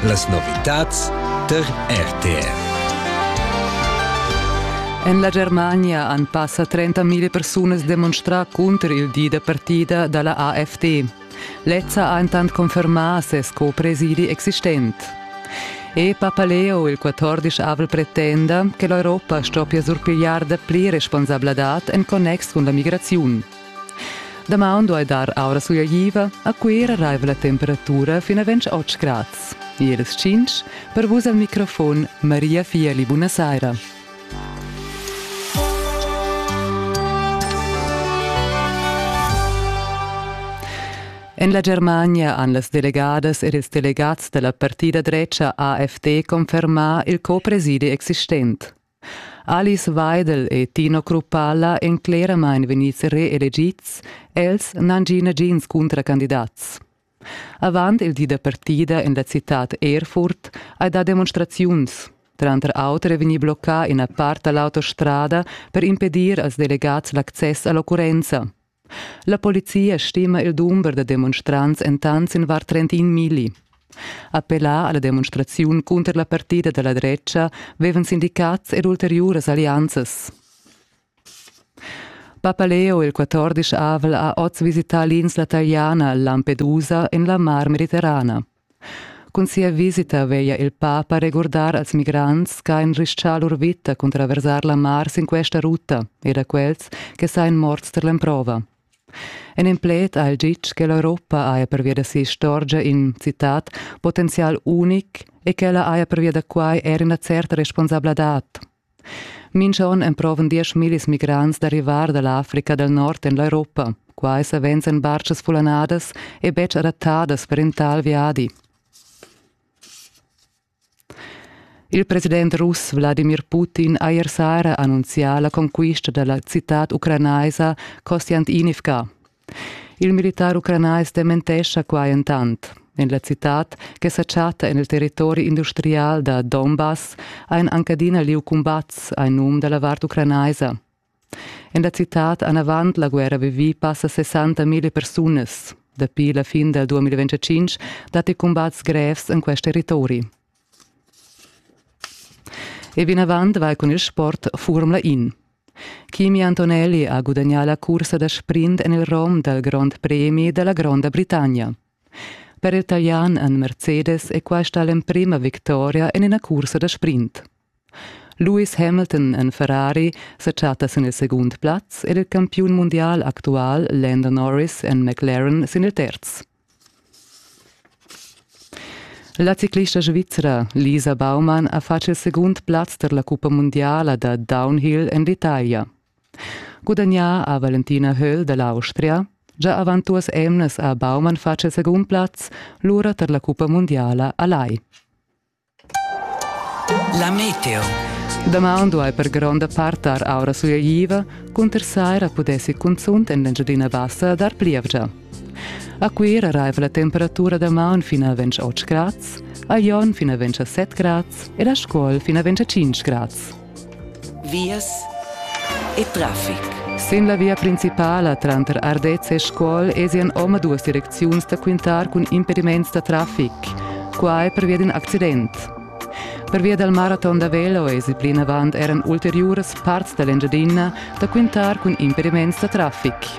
Las novitads tar RTR. En la Germania han passa 30.000 persunas demonstrà cunter il di da partida da la AfD. Lezza ha entant confermà ses co-presidi existent. E Papaleo, il 14-avel, pretenda che l'Europa stoppia surpigliar dapli responsabladad en connex cun la migraziun. Damaun duai dar aura sugliaiva, a Cuira raiva la temperatura fin a 28 grads. Ier las 5, per vus al microfon Maria Fieli, buonasera. En la Germania han las delegadas ed ils delegats della partida drecia AfD confermà il copresidi existent. Alice Weidel e Tino Kruppalla èn cleramain vegnids reelegids, els n'han gì nagins cuntracandidats. Avant il di da partida en la citad Erfurt hai dà demonstraziuns. Tranter auter è vegnì bloccà ina part da l'autostrada per impedir als delegads l'access a l'occurrenza. La polizia stima il dumber da demonstrants entant sin var 31 milli. Appellà alla demonstraziun cunter la partida dalla drecha vevan sindicats ed ulteriuras allianzas. Papaleo il 14 avel ha oz visità l'insla taliana Lampedusa en la Mar Mediterrana. Cun sia visita veglia il papa regurdar als migrants ch'ha enrischà lur vita cun traversar la mar sin questa ruta e da quels che sain morts tar l'emprova. En in pled ha el ditg che l'Europa haja pervia da si'istorgia in, citat, potenzial unic e ch'ella haja pervia da quai er ina certa responsabladad. Mincha on emprovan diesch millis migrants da rivar da l'Africa dal Nord en l'Europa. Quai savens en bartgas fullanadas e betg adattadas per in tal viadi. Il president russ Wladimir Putin ha ier saira annunzià la conquista da la citad ucranaisa Kostiantynivka. Il militar ucranais dementescha quai entant. En la citad, che sa chatta en il territori industrial da Donbass, ha en Ankadina lieu cumbats a num da la vart ucranaisa. En la citad anavant la guerra vivì passa 60.000 persunas. Dapi la fin dal 2025 datti cumbats grevs en questi territori. E vinavant vai con il sport Formula In. Kimi Antonelli ha gudagnà la cursa da sprint en il rom dal Grond Premi da la Gronda Britannia. Per il Talian en Mercedes è questa l'emprima victoria en ina cursa da sprint. Lewis Hamilton en Ferrari sa chatta sin il segund plaz ed il campiun mundial actual Lando Norris en McLaren sin il terz. La ciclista svizra Lisa Baumann ha fatg il segund plaz tar la cuppa mundiala da downhill en l'Italia. Gudagnà ha Valentina Höll da l'Austria. Già avant duas emnas ha Baumann fatg il segund plaz, lura tar la cuppa mundiala a Lai. La meteo. Damaun duai per gronda part dar aura suleiva, cunter saira pudessi cunzunt en l'Engiadina Bassa dar plievgia. A Cuira raiva la temperatura damaun fin a 28 grads, a Jon fin a 27 grads ed a Scuol fin a 25 grads. vias e traffic. Sin la via principala tranter Ardez e Scuol esian omaduas direcziuns da quintar cun impediments da traffic. Quai pervia d'in accident. Pervia dal maraton da velo esi plinavant eran ulteriuras parts da l'Engiadina da quintar cun impediments da traffic.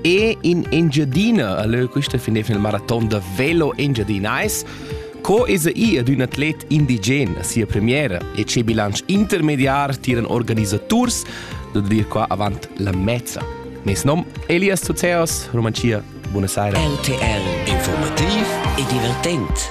e in Engiadina a lö quista fin il maraton da velo engiadinais Co es i ad ün atlet indigen a sia premiera e che bilanc intermediar tiran organisaturs da dir qua avant la mezza. Mes nom Elias Tuzeos, Romancia, buona saira. LTL, informativ e divertent.